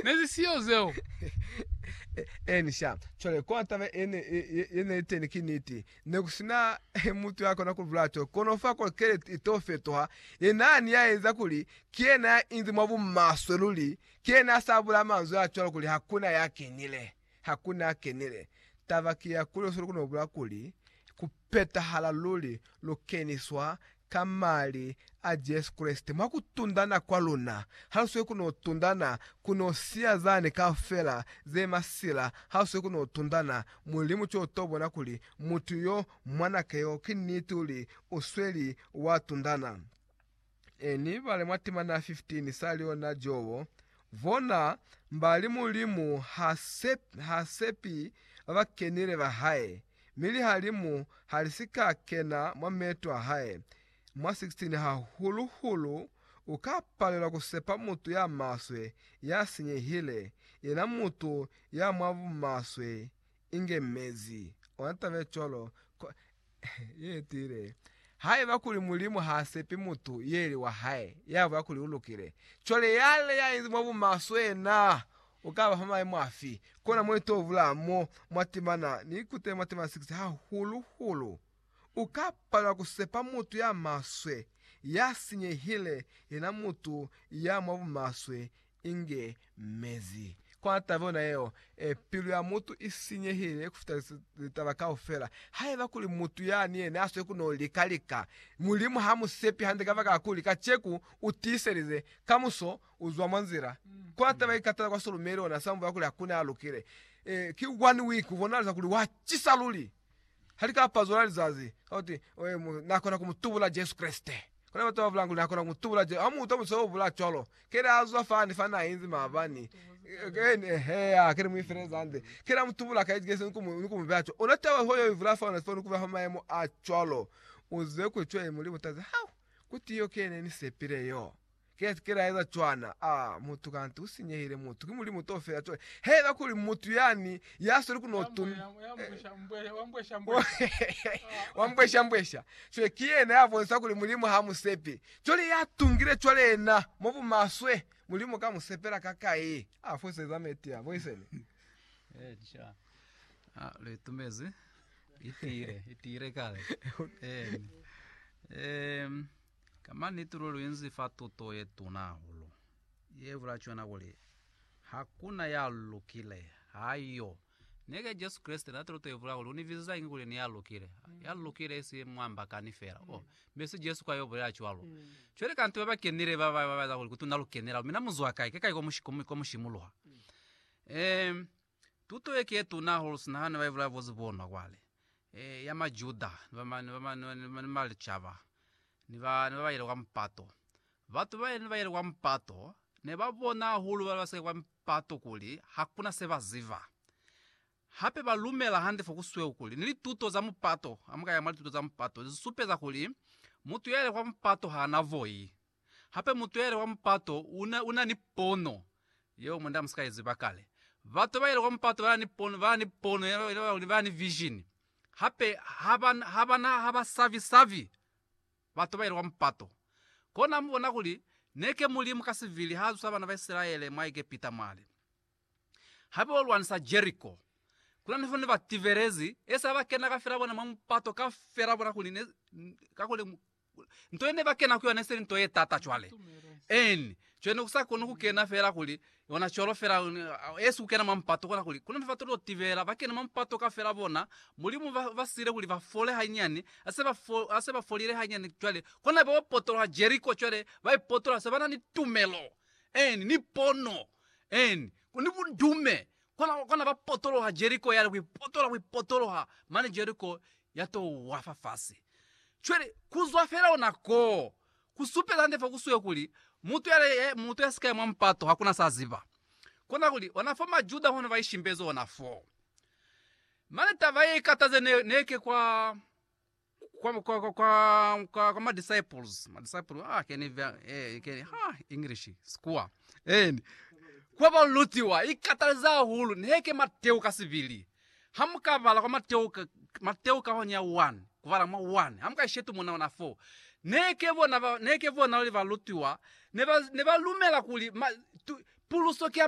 Nezi siyo zeo. Eeni, sha. Cwale, kwa taba ye ne, ye ne teni, ki niti, ne ku sina mutu ya kona ku bulaya to, kono fa kolokele i to fetoha. Yena ani ya eza kuli, ki yena ya inzi mwa bumaswe luli, ki yena ya sa bulaya manzwi a cwalo kuli hakuna ya kenile. Hakuna a kenile. Taba ki ya kuli sulu kuno bula kuli, ku petahala luli, lu keniswa ka Mali a Jesu Kreste, mwa ku tundana kwa luna. Ha lu sweli kuno tundana, ku no siya zani kaufela ze masila. Ha lu sweli kuno tundana, Mulimu ki o to bona kuli mutu yo, mwanake yo, ki niti luli u sweli wa tundana. e ni bale mwa timana 15 sa liona Jobo, bona mbali Mulimu ha sepi, ha sepi ba ba kenile ba hae, mi lihalimu ha li si ka kena mwa meeto a hae. Mwa 16 hahulu hulu u ka palelwa ku sepa mutu ya maswe, ya sinyehile, yena mutu ya mwa bumaswe inge mezi. Ona taba ye cwalo. Yetile. Haiba kuli Mulimu ha sepi mutu yeli wa hae, ya buya kuli u lukile, cwale yale ya inzi mwa bumaswe na u ka ba fa maimo afi? Kona mo i to bula mo mwa timana, ni ikutele mwa timana 6, hahulu-hulu u ka palelwa ku sepa mutu ya maswe, ya sinyehile, yena mutu ya mwa bumaswe, Inge mezi. Kwa taba yona yeo, pilu ya mutu i sinyehile kufita litaba kaufela. Haiba kuli mutu yani yena a swe ku no lika-lika, Mulimu ha mu sepi hande kabakala kuli kaceku u tiiselize, kamuso u zwa mwa nzila. Kwa taba ye katala kwa Solomei, lona sa muvela kuli hakuna ya lukile. Ki one week, u bonalisa kuli wa cisa luli. Ha li ka pazula lizazi, ka kuti, Oe, mu, Na kona ku mu tubula Jesu Kreste. Kuna batu ba bula kuli, Na kona ku mu tubula Jesu. Ha mu utwa mutu yo bula cwalo, keli a zwa fani fa na inzi maabani, keni, eheya, keli mu ifeleza nde, keli a mu tubula ka Jesu ni ku mu, ni ku mu beya cwalo. Ona taba ho yo i vula fao, na sifani ku ba fa mayemo a cwalo. Uzwe kuli cwale mu li butazi, Hau! Kuti yo ke ne ni sepile yo? Kesi kela eza cwana. Ah mutu kanti u sinyehile mutu ki mulimu to fela cwale he eba kuli mutu yani ya sweli ku no tun wa mbwesha mbwesha cwale ki yena ya bonisa kuli mulimu ha mu sepe cwale ya tungile cwale yena mo bu maswe mulimu ka mu sepela ka kai a fose za meti ya boysen eh cha ah le tumezi itire itire kale eh eh Ka maniti luli lu inzi fa tuto ye tuna hahulu, ye bula cwana kuli, Ha ku na ya lukile. Ha yo. Neke Jesu Kreste na tuto ye bula kuli, U ni biziza inge kuli ni ya lukile? Ya lukile isi mwa mbakani fela. Oh, mi si Jesu kwa yo bulela cwalo. Cwale kanti ba ba kenile ba ba ba eza kuli, Kutuna lu kenela, mina mu zwa kai? Ke kai kwa mu shimuluha? Ehm, Tuto ye ki ye tuna hahulu sina hane ba ibulaya bo zibonwa kwale, e, ya Majuda ni ba, ni ba, ni ba licaba, ni ba, ni ba ba yile kwa mupato. Batu ba ne ba yile kwa mupato ne ba bona hahulu bana ba si ka kwa mupato kuli hakuna se ba ziba. Hape ba lumela hande fo ku sweu kuli ni lituto za mupato, ha mu ka ya mwa lituto za mupato, li supeza kuli mutu ya yile kwa mupato ha na voi. Hape mutuheli wa mupato u na, u na ni pono yeo munda mu si ka i ziba kale. Batuheli ba mupato ba na ni pono, ba na ni pono yeo, yeo ba kuli ba ni vision. Hape ha ba, ha ba na, ha ba savi-savi batuheli ba mupato. Kona mu bona kuli neke Mulimu ka sibili ha zusa bana ba Isilaele mwa Egepita mwale. Ha bo lwanisa Jeriko, ku na ni fo ne ba tibelezi, e sa ba kena kafela bona mwa mupato, kafela bona kuli ne, kakuli Nto yene ba kena ku yona iseli nto ye tata cwale. En, co yene ku sa koni ku kena fela kuli, yona cwalo fela, esi ku kena mwa mupato, kona kuli, kuna nefa tolilo tibela, ba kene mwa mupato kafela bona, Mulimu ba, ba sile kuli ba fole hanyani, ha se ba fo, ha se ba folile hanyani cwale, kona bao potoloha Jeriko cwale, ba i potola, se ba na ni tumelo, en, ni pono, en, ni bundume, Kona, kona ba potoloha Jeriko yale, ku ipotoloha, ku ipotoloha, mane Jeriko ya to wa fa fasi. Cwale, ku zwa fela ona koo, ku supeza hande fa ku suyo kuli, mutu yale, mutu ya si ka ya mwa mupato, hakuna sa ziba. Kona kuli, ona fo Majuda hono ba ishimbezi ona foo. Mane taba ye ikataze ne, ne ke kwa, kwa, kwa, kwa, kwa, kwa, kwa ma-disciples ma-disciples ah can you ver- eh, can, ha english sikuwa and kwa balutiwa ikataleza hahulu neke mateo ka sibili ha mukabala kwa mateo ka mateo ka hone ya 1 kubala mwa 1 ha mukaishetu mona ona 4 neke bona ba neke bona li balutiwa ne ba ne ba lumela kuli ma, tu, puluso ki ya